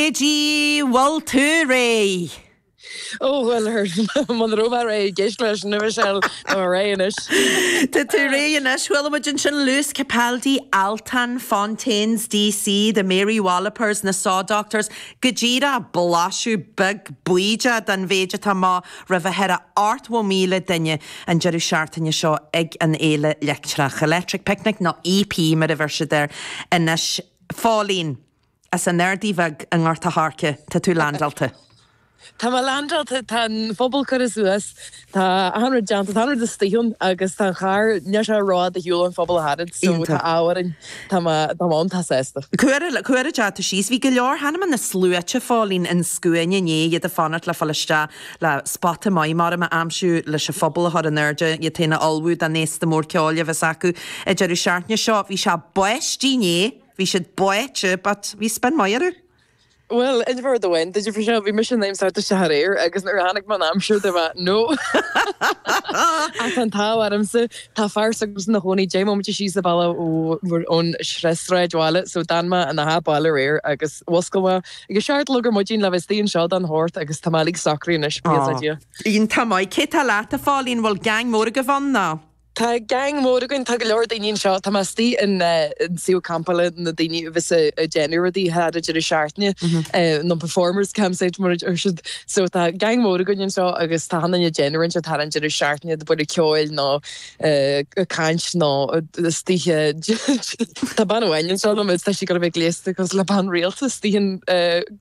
An bhfuil tú réidh? Ó bhuel, muna raibh mé réidh i gceist leis an uimhir sin, tá mé réidh anois. Tá tú réidh anois. Chuala muid ansin Lewis Capaldi, Altan, Fontaines D.C. The Mary Wallopers, na Saw Doctors, go díreach blaiseadh beag bídeach den mhéid atá romh a thuilleadh ar ochtó míle duine an deireadh seachtaine seo ag an Fhéile Leictreach, Electric Picnic, nó EP mar a bheir siad air anois. Phóilín. As an Ardaidh Bheag i nGort a' Choirce, tá tú leaindeáilte. Tá mé leaindeáilte, tá an phuball curtha suas, tá achan rud déanta, tá achan rud istigh ann agus tá an charr, níl sé rófhada do shiúl an phuball a tharraingt, so tá an t-ádh orainn, tá mé an-t-sásta. Cuireadh, cuireadh, tá tú síos. Bhí go leor, chonaic mé na sluaite Phóilín i scuainí inné iad ag fanacht le fáil isteach le spota maith mhaidim a aimsiú leis an phuball a chur in airde, iad féin a ullmhú don fhéasta mór ceoil a bheas acu ag deireadh seachtaine seo. Bhí siad báite inné. Bhí siad báite but we spend money on it. Bhuel, in order to win, did you for sure, bhí mise in ainm is dul isteach aréir agus nuair a chonaic mé an aimsir dúirt mé no! Ach an t-ádh ormsa, tá fear suimhneach ina chónaí deich mbóiméad síos an bealach ón tSráidbhaile so d'fhan mé ina bhaile aréir agus mhuscail mé agus seacht a chlog ar maidin le bheith istigh anseo don hocht agus tá mé uilig socraithe anois, buí le Dia. Iontach maith, cé tá leat, a Phóilín, bhfuil geaing mór agaibh ann ná? Tá geaing mhór againn, tá go leor daoine anseo, tá mé istigh i suíomh campála na daoine a bheas a' déanamh rudaí thar an deireadh seachtaine, na performers campsite mar a deir siad. So tá geaing mhór againn anseo agus tá achan duine déanamh rud thar an deireadh seachtaine, ag bualadh ceoil nó ag caint nó istigh i. Tá bean amháin anseo liom agus tá sí ag dul a bheith gléasta cosúil le bean rialta, istigh i.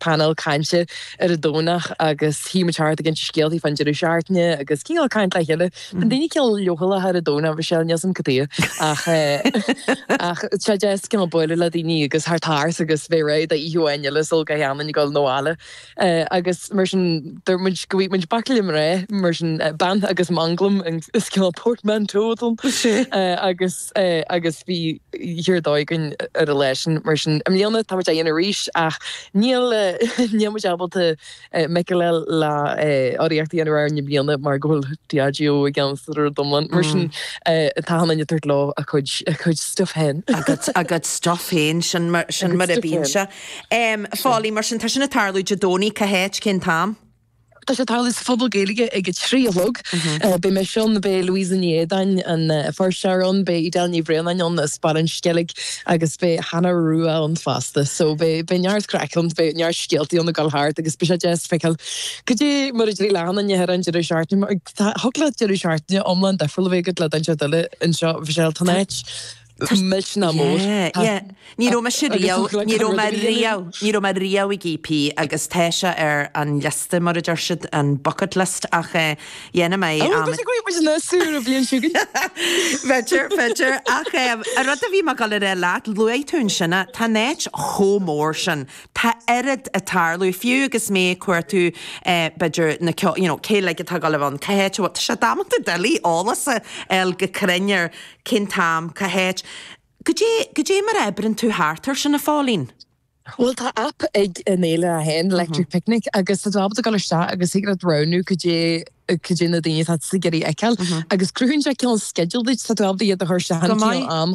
painéal cainte ar an Domhnach agus shuigh muid thart ag inse scéaltaí fán deireadh seachtaine agus ag ceangal le chéile. Bíonn daoine cineál leochaileach ar an Domhnach, Michelle, níl 's agam cad é ach eh ach tá sé deas cineál bualadh le daoine agus thar taars agus bheith réidh d'oíche amháin eile sula gcaitheann muid a ghabháil abhaile eh agus mar sin dúirt muid go bhfuigh muid baicle mná mar sin eh bean agus manglam is cineál portmanteau é eh agus agus bhí an-dóigh againn ar a leithéid sin. Mar sin, i mbliana, táimid á dhéanamh arís, ach níl muid ábalta Michael L. le urraíocht a dhéanamh air i mbliana mar go bhfuil Diageo i gceannas ar an rud iomlán. Mar sin, tá daoine ag tabhairt leo a gcuid stuif féin. A gcuid stuif féin, sin mar a bhíonn sé. Phóilín, mar sin, tá sin ag tarlú Dé Domhnaigh, cá háit, cén t-am? Tá sé ag tarlú sa Phuball Gaeilge ag a trí a chlog. Beidh mise ann, beidh Louisa Ní Éideáin, an fuirseoir, ann, beidh Edel Ní Bhraonáin ann as Baile an Sceilg agus beidh Hannah Rua ann fosta. So beidh neart craic ann, beidh neart scéaltaí ann ag dul thart agus beidh sé deas feiceáil cad é mar a d'éirigh le hachan nduine ar an deireadh seachtaine mar tá, thig leat deireadh seachtaine iomlán difriúil a bheith agat le daoine eile anseo. Mhichelle, tá an áit. Milse ná mór. Yeah, yeah. Ní raibh mise riamh, ní raibh mé riamh, ní raibh mé riamh ag EP agus tá sé ar an liosta, mar a deir siad, an bucket list ach eh, dhéanfaidh mé am. Oh, go dtí go raibh muid ann ar an bhliain seo againn. B'fhéidir, b'fhéidir. Ach eh, an rud a bhí mé ag dul a rá leat, luaigh tú ansin eh, tá an áit chomh mór sin, tá oiread ag tarlú, fiú agus mé ag cuartú eh, b'fhéidir na ceo, you know, cé uilig atá ag dul a bheith ann, cá háit a bhfuil siad, tá sé damanta doiligh eolas a fháil go cruinn ar Cén t-am? Cá háit? Goidé, goidé mar a oibríonn tú thart air sin, a Phóilín? Bhuel, tá aip ag an fhéile é féin, Electric Picnic, agus tá tú ábalta dul isteach agus thig leat roghnú goidé, goidé na daoine atá tú ag iarraidh a fheiceáil. Agus cruthaíonn sé cineál sceideal duit, tá tú ábalta iad a chur isteach ar an gcineál am.